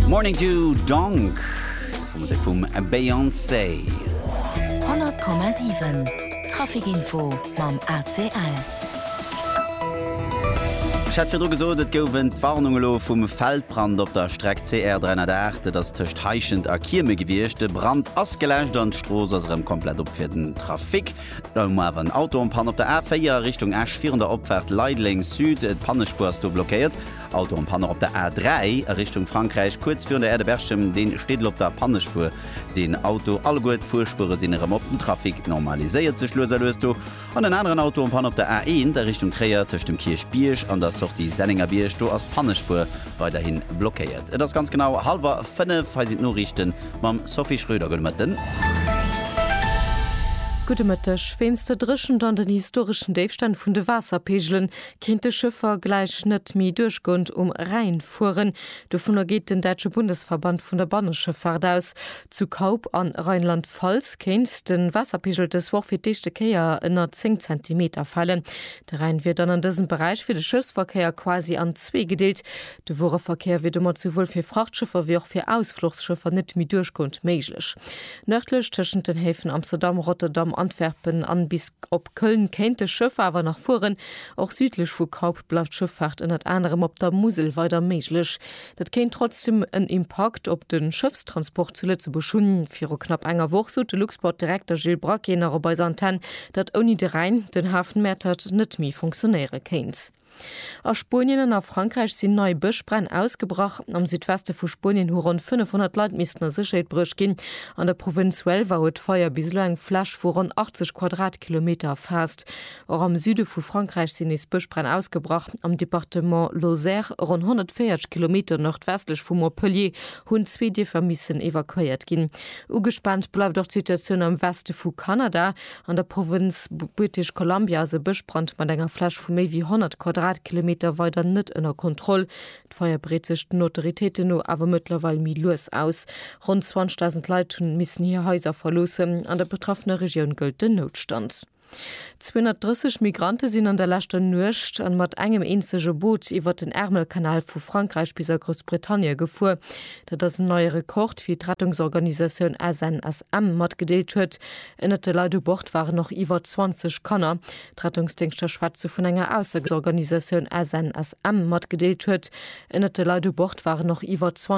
Morning du Dong, Musek vum Beyoncé. 100,7 Trafikinfo mam ACL. Ech hat virdru gesot, et gouwen d'Warnung elo vum Feldbrand op der Streck CR 308. Et ass tëscht Heischent a Kieme gewiescht. De Brand ass geläscht an d'Strooss ass erëm komplett op fir den Trafic. Elo mar awer en Auto en Panne op der A4 Richtung Esch virun der Opfaart Leideleng Sud. D'Pannespuer ass do blockéiert. Auto am Panne op der A3 a Richtung Frankräich, kuerz virun der Aire de Berchem, deen steet elo op der Pannespuer, deen Auto. Alleguer d'Fuerspuere sinn erëm op, den Trafic normaliséiert sech lues a lues do. An en aneren Auto am Panne op der A1 a Richtung Tréier, tëscht dem Kierchbierg an der Sortie Sennengerbierg, do ass d'Pannespuer weiderhi blockéiert. Et ass ganz genau hallwer fënnef, hei sinn d'Noriichte mam Sophie Schröder. Gudde Mëtten. Gudde Mëtteg. Wéinst der Dréchent an den historeschen Déifstänn vun de Waasserpeegelen Kéint de Chauffer gläich net méi duerchgoend um Rhäin fueren? Dovunner geet den däitsche Bundesverband vun der Banneschëffaart aus. Zu Kaup a Rheinland-Pfalz kéint de Waasserpegel dës Woch fir d'éischte Kéier ënner 10 Zentimeter falen. De Rhäin wier dann an dësem Beräich fir de Schëffsverkéier quasi an zwee gedeelt. De Wuereverkéier wier domat souwuel fir Frachtschëffer wéi och fir Ausfluchsschëffer net méi duerchgoend méiglech. Nërdlech tëschent den Häfen Amsterdam, Rotterdam, Antwerpen an bis op Köln kéint de Schëff awer nach fueren. Och südlech vu Kaup bleift Schëffaart ënnert anerem op der Musel weider méiglech. Dat kéint trotzdem en Impakt op de Schëffstransport zu Lëtzebuerg hunn. Viru knapp enger Woch sot de Luxport-Direkter Gilles Braquet nach op eiser Antenn, datt ouni de Rhäin den Hafen Mäertert net méi funktionéiere kéint. A Spuenien an a Frankräich sinn nei Bëschbränn ausgebrach. Am Südweste vu Spuenien hu ronn 500 Leit missten a Sécherheet bruecht ginn. An der Provënz Huelva huet d'Feier bis elo eng Fläch vu ronn 80 Quadratkilometer erfaasst. Och am Süde vu Frankräich sinn nees Bëschbränn ausgebrach. Am Departement Lozère, ronn 140 Kilometer nordwestlech vu Montpellier, hunn zwee Dierfer missen evakuéiert ginn. Ugespaant bleift och d'Situatioun am Weste vu Kanada. An der Provënz British Columbia ass e Bëschbrand mat enger Fläch vu méi wéi 100 Quadratkilometer weider net ënner Kontroll. D'Feier breet sech den Autoritéiten no awer mëttlerweil méi lues aus. Ronn 20.000 Leit hu missen hir Haiser verloossen. An der betraffener Regioun gëllt den Noutstand. 230 Migrante sinn an der leschter Nuecht an mat engem eenzege Boot iwwert den Ärmelkanal vu Frankräich bis a Groussbritannie gefuer. Dat ass en neie Rekord, wéi d'Rettungsorganisatioun SNSM matgedeelt huet. Ënnert de Leit u Bord waren och iwwer 20 Kanner. D'Rettungsdéngschter schwätze vun enger Aussergsorganisatioun, SNSM, matgedeelt huet. Ënnert de Leit u Bord waren och iwwer 20.